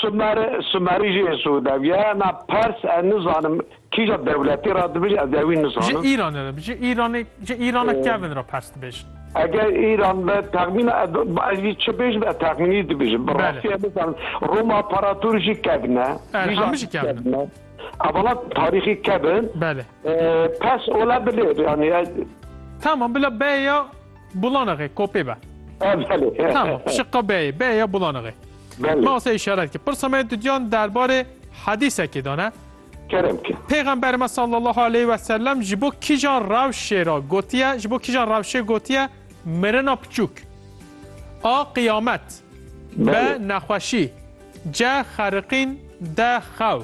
Sumer, Sumerî jî Êsû dev ye. Na Pers ez nizanim kîja dewletê re dibêje ez ê wî nizanim. Ji Îranê re bi, ji Îranê, ji Îrana kevin re Pers dibêjin. Eger Îran be texmîna ez, ez jî çi bêjim ez texmînî dibêjim. Bi rastî ez nizanim. Roma Paratûr jî kevin e. Belê, hemû jî kevin in. Evala tarîxî kevin. Belê. Pers ola bilê yanî. Tamam bila beya. Bulanaxê, kopê be. Ha belê. Tamam, şiqqa beyê, beyê ya bulanaxê. Belê. Ma se işaret ki. Pirsa me dudiyan derbarê hedîsekê de ne. Kerem ki. Pêxemberê me sallallahu aleyh ve sellem ji bo kîjan rewşê re gotiye, ji bo kîjan rewşê gotiye mirina piçûk. A qiyamet. Be Belê. nexweşî. Ce xeriqîn. De xew.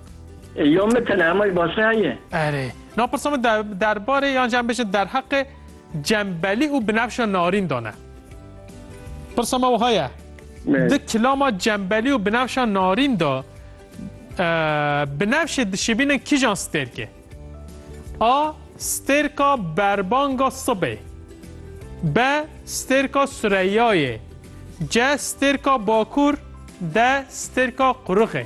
Yo min tele hemay baş heye. Erê. Na pirsa min derbarê yan jî em bêjin derheqê Cembelî û Binefşa Narîn de ne. Pirsa me wiha ye. Di kilama Cembelî û Binefşa Narîn de Binefşê dişibînin kîjan stêrkê? A. Stêrka berbanga sibê. B. Stêrka Sureyayê. C. Stêrka Bakur. D. Stêrka Qurixê.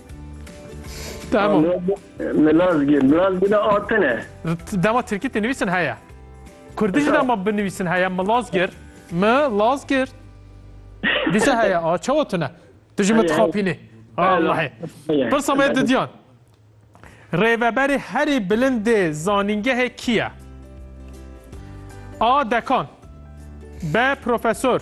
Tamam. Milazgir, Milazgir atine. Dema Tirkî te nivîsin heye. Kurdî jî dema binivîsin heye Milazgir. Milazgir. Dîsa heye a çawa tune. Tu ji min dixapînî. Allahê. Pirsa me didiyan. Rêveberê herî bilindê zanîngehê kî ye? A. Dekan B. Profesor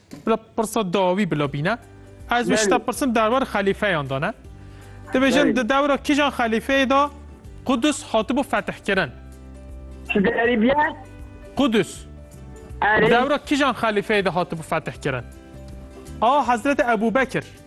Bila pirsa dawî bila bîne. Ez wî şita pirsin derbar xelîfeyan de ne. Dibêjin di dewra kîjan xelîfeyê de Qudus hatibû fetihkirin. Çi derî biye? Qudus. Di dewra kîjan xelîfeyê de hatibû fetihkirin. A Hezreti Ebûbekir.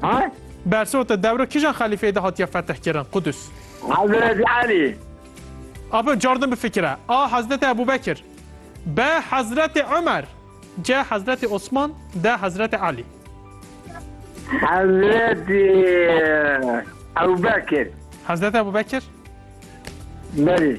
Ha? Bersota dewra kijan xelîfeyê de hatiye fetihkirin Qudus? Hezretî Elî. A bi car din bifikire. A Hezretê Ebû Bekir. B Hezretê Umer. C Hezretê Osman. D Hezretê Elî. Hezretî Ebû Bekir. Hezretê Ebû Bekir? Belê.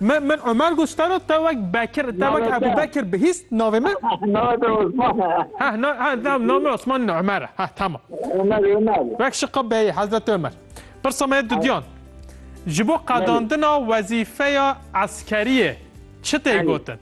Min min Omer got stano te wek Bekir te wek Ebu Bekir bihîst navê min. Navê te Osman e. Heh na heh nav navê Osman ne Omer e. Heh tamam. Omer Omer. Wek şiqa beyê Hezreti Omer. Pirsa me dudiyan. Ji bo qedandina wezîfeya eskeriyê çi tê gotin?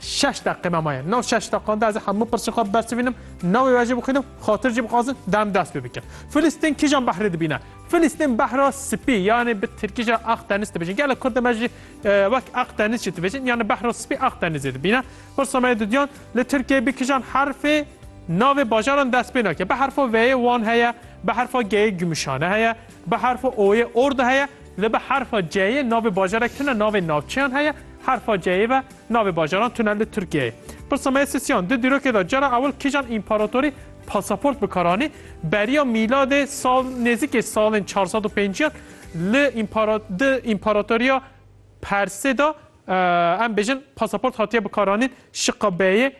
Şeş deqîme maye. Nav şeş deqan de ez ê hemû pirsên xwe bibersivînim, navê we jî bixwînim, xatir jî bixwazin, dem dest pê bikin. Filistîn kîjan behrê dibîne? Filistîn behra spî yanî bi tirkî jî aq deniz dibêjin. Gelek Kurd e me jî wek aq deniz jî dibêjin. Yanî behra spî aq denizê dibîne. Pirsa me yê duduyan li Tirkiyeyê bi kîjan herfê navê bajaran dest pê nake? Bi herfa V'yê Wan heye, bi herfa G'yê Gümüşhane heye, bi herfa O'yê Ordu heye, Li bi herfa C'yê navê bajarek tune navê navçeyan heye, herfa C'yê ve navê bajaran tune li Tirkiyeyê. Pirsa me ya sisiyan, di dîrokê de cara ewil kîjan împaratorî pasaport bi kar anî? Beriya mîladê sal nêzîkê salên çar sed û pênciyan li împara di împaratoriya Persê de em bêjin pasaport hatiye bikaranîn, Şiqa Beyê,